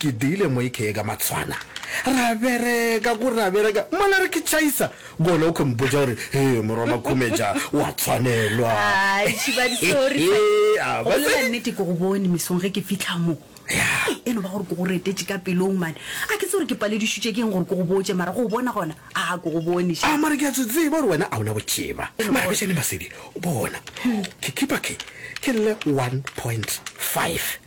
Ke diile moike ye ka matshwana. Ra bereka ku ra bereka mola re ke tšhaisa gona o ke mpotša gore he morwa Makhumetša wa tshwanelwa. Ai, Tšhibadi, sorry hle. Ea, Go bolela batswadi. nnete ke go bone mesong ge ke fihla mo. Ei, E no ba gore ke go retetše ka pelong mane. A ke tse gore ke paledišitše ke eng gore ke go botše mara go o bona gona a ke go bone A ša. mara ke a se tseba gore wena a o na bothiba. Mara bešane Masedi, bona. Ke kipa ke ke lle 1.5.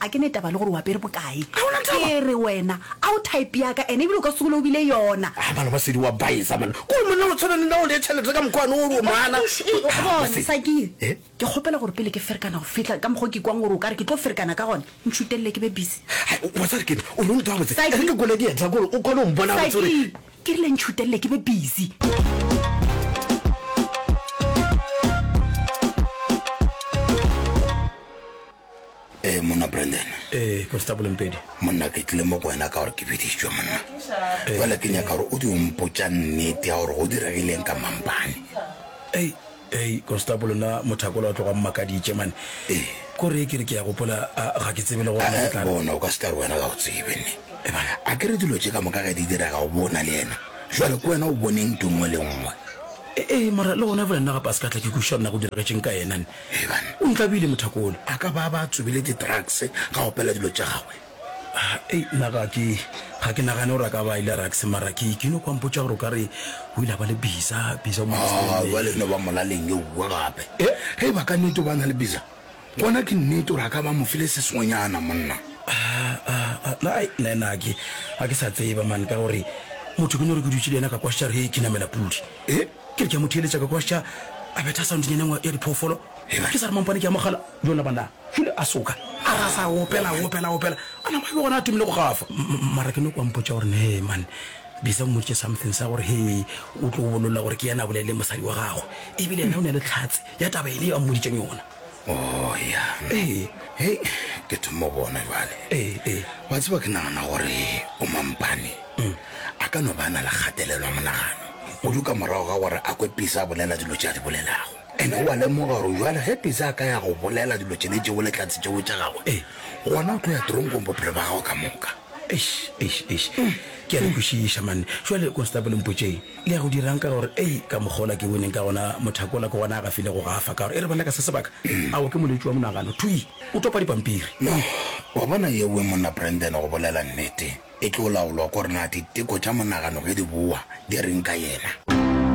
A ke ne taba le gore o apere bokae. Ga ona taba. Ke re wena a o type ya ka ene ebile o ka se gole o bile yona. Ah mano ba sedi wa baisa mano. Ke gore monna o tshwana le nna o le chelete ka mokgwa one o re o mana. Eish ei o bona Sakile Eh? ke kgopela gore pele ke ferekana go fihla ka mokgwa o ke kwang gore o ka re ke tlo ferekana ka gona ntšhutelele ke be busy. Hai o tsare ke o lo ntwa botse. Saki. Re ke gole dietla gore o kgone go mpona botse gore Sakile ke rile ntšhutelele ke be busy. ee monna brandon ee constable mpedi monna ke tlile mo go wena ka gore ke biditšwe monna jale ke nyaka gore o di ompotsa nnete ya gore go diregileng ka mampane ei ei constable na mothakola o tloga mmakaditše mane ee kore ke re ke ya gopola ga ke tsebe le gorebona o ka se tla re wena ga o tsebe ne ebana a ke re dilo tše ka moka ge di direga o bona le yena jale ke wena o boneng tungwe le nngwe ee mara le gona fela nna gape a se ka tla ke kuša rena go diregetseng ka yena ne Eban, o ntlabile mothako ole, a ka ba a ba a tsubile di-drugs ga opela dilo tša gagwe. Ei, nna ga ke, ga ke nagane gore a ka ba a ile rugs, mara ke, ke nyoko a mpotša gore o ka re o ile a ba le biza, biza o mo Aa, Australian. bjale e no ba molaleng eowa gape. E, ge e ba ka nnete o ba a na le biza, gona ke nnete gore a ka ba a mo file se sengwenyana, monna. Aa, aa, aa, na, ai, nna, nna ga ke, ga ke sa tseba, man, ka gore motho ke no re ke dutše le yena ka kwa Sharhei ke namela pudi. E? Ke re ke a mo theeletša ka kwa Sha a betha soundnyana engwe ya diphoofolo. Ke sa re mampane ke a mogala, bjoo la banna Shule a soka a re a sa opela, a opela, a opela, a nama a be gona a thomile go gafa. Mara ke noko a mpotša gore ne hee man, Bisa o mmoditše something sa gore hee o tlo o bolola gore ke yena a bolaileng mosadi wa gagwe, ebile yena o ne a le tlhatse ya taba e le yeo a mmoditšeng yona. Oh, ya. Ee. Hei, ke thoma go bona jwale. Ee, ee. Wa tseba ke nagana gore o mampane mm. a ka no ba na le kgatelelo ya monagano kudu ka morago ga gore a kwe Pisa a bolela dilo tše a di bolelago ene o a lemoga gore jwale ge Pisa a ka ya go bolela dilo tše ne tšeo le tlatse tšeo tša gagwe ee. gona o tlo ya tronkong bophelo ba gago ka moka eish eish eish ke a le kwešiša manne jwale constable mpotšeng Le ya go dira'ng ka gore, ei, ka mokgwa ola ke boneng ka gona, mothako ola ke gona a gafilego go gafa ka gore, e re ba leka se sebaka, ao ke molwetši wa monagano, thwi! O topa dipampiri. No, wa bona, ye we, Monna Brandon, go bolela nnete, e tlo laolwa ke gore na diteko tša monagano ge di bowa, di re'ng ka yena.